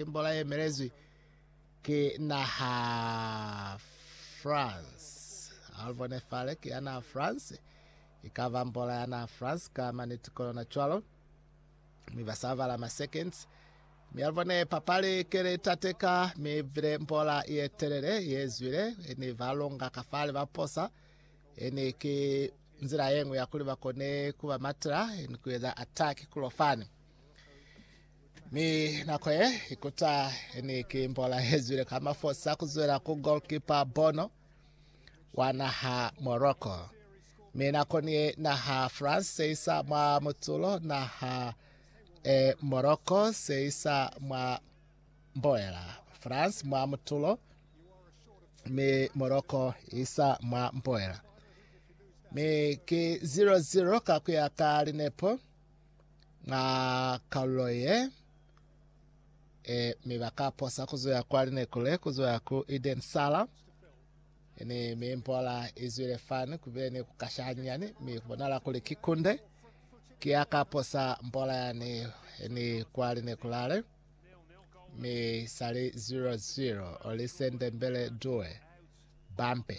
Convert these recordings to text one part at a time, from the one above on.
Tembola ye emelezwi ki naha France. Alvone Fale ki ya naha France. I ka ba mbola ya naha France ka maniti ko yona cwalo. Mi ba sa bala ma seconds. Mi Alvone papali ki li tateka, mi bile mbola ye telele ye zwile. Ni ba longa ka fale ba posa. Ni ki nzila ye ñwi ya kuli ba kone ku ba matela ni ku eza attack kulo fani. Mi nako ye ikuta ni ki mbola ye zwile ka mafosa kuzwela ku goalkeeper Bono wa naha Morocco. Mi nako ni ye naha France seisa mwa mutulo naha e Morocco seisa mwa mboela. France mwa mutulo mi Morocco isa mwa mboela. Mi ki 0-0 ka kuya ka linepo. nga kalulo ye, e, mi ba ka posa ku zuya kwa linekule, ku zuya ku Eden Sala, ni mi mpola i zwile fani, ku bile ni ku kasha hanyani, mi ku bonala kuli ki kunde. Ki ya ka posa mpola yani ni kwa linekulale, mi sali 0-0, oli sendembele due. Bampe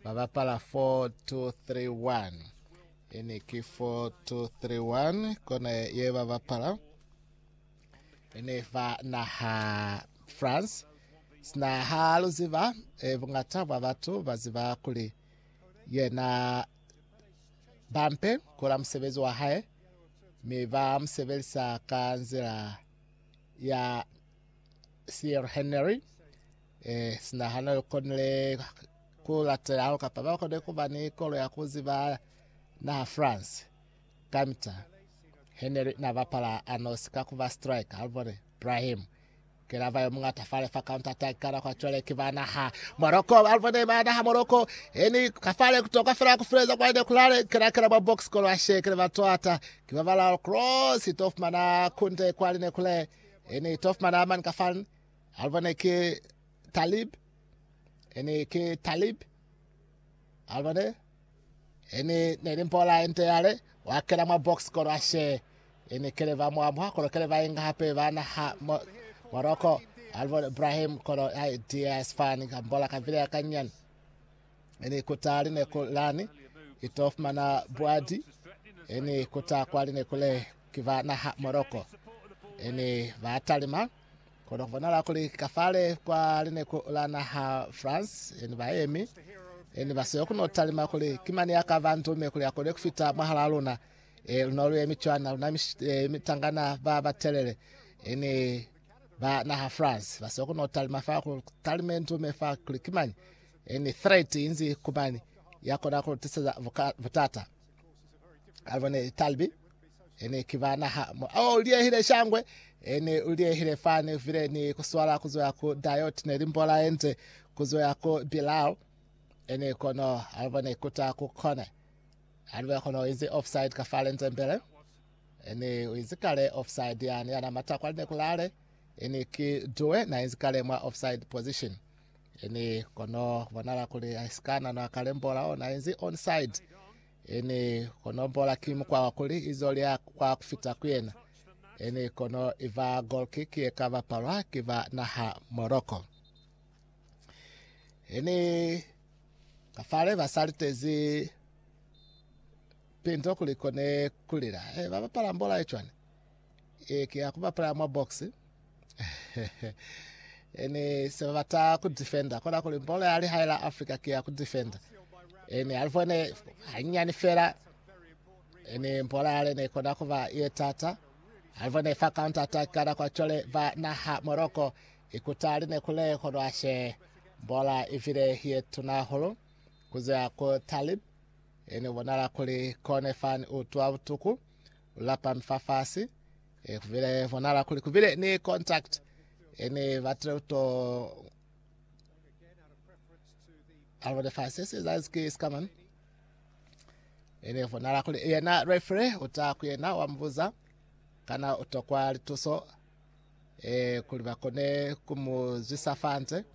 ba bapala 4231. Ene ki 4231 kona ye ba bapala. Ene fa naha France. Sina ha lu ziba, e, bungata bwa batu ba ziba kuli yena bampe kula musebezi wa hae, mi ba musebelisa ka nzila ya Thierry Henry. Ee, sina hane lu konile ku latela hahulu kapa ba kone ku ba ni kolo ya ku ziba naha France kamita Henry na bapala anosi ka ku ba striker, ha lu bone Brahim ke lava yo muñata fale fa counter attack ka nako cwale ki ba naha Morocco, ha lu bone ba naha Morocco eni ka fale ku toka fela ku fileza kwa ine kulale kela kela mwa box kolo ashe kele ba toata ki ba bala cross to fumana kunde kwa line kule eni to fumana man ka fan Alva ne ki Talib, ene ki Talib, Alva ne, ene neli mpola ente yale, wa kena mwa box kolo ashe, ene kele va mwa mwa kolo kele va inga hape ba naha mo, Morocco, Alva Ibrahim kolo ya DS fan ka mbola ka vile ya kanyan, ene kuta line kulani, ito fumana buadi, ene kuta kwa line kule kiva naha Morocco, ene ba talima, Kono ku bonala kuli ka fale kwa lineku la naha France, eni ba yemi, eni ba siyo kuno talima kuli ki mani ya ka ba ndume kuli akone ku fita mwahala luna. E, luno lu yemi cwana, luna mish- e, mitangana ba ba telele, eni ba naha France, ba siyo kuno talima fa ku talime ndume fa kuli ki mani, eni threat inzi ku mani ya kona ku tiseza buka, butata. Alba ne talbi ene ki ba naha mo ao liehile shangwe ene liehile fane vile ni kuswala kuzoya ku diot ne limbola enze kuzoya ku bilal ene kono alba ne kuta ku kone alba kono izi offside ka fale nze mbele ene izi kale offside yani yana mata kwa ne kulale ene ki duwe na izi kale mwa offside position Ini kono bonala kuli aisikana no akalembola ona inzi onside. Ini kono mbola ki mukwa wa kuli izo lya kwa kufita ku yena. Ini kono iva goal kick ye ka bapalwa ki ba naha Morocco. Ini kafale ba salitezi pinto kuli kone kulila. Eh, ba bapala mbola ye chwane. Eh, ki ya kubapala mwa box. Ene se ba bata ku defender kona kuli bolo ya lihae la Africa ke ya ku defender. Ene a livone hanyani fela ene bolo ya lene kona kuba ye tata. A livone fa counter attack kana kwa chole ba naha Morocco ikuta line kule kono ashe bola ivile ye tuna holo kuze ya ko Talib ene bonala kuli kone fan utwa butuku ulapa mfafasi E kubile bonala kuli kubile ni contact ene batile to alo de fa se se za ske skaman ene bonala kuli yena refre uta ku yena wa mbuza kana utokwa lituso e kuli bakone kumuzwisa fanze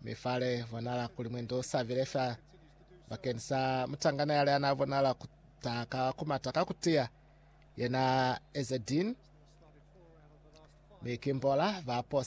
mifale bonala kuli mwendo sabile fa bakenisa mutangana yale ana bonala kutaka kumataka kutia Yena Ezedin mi Kimbola ba posa.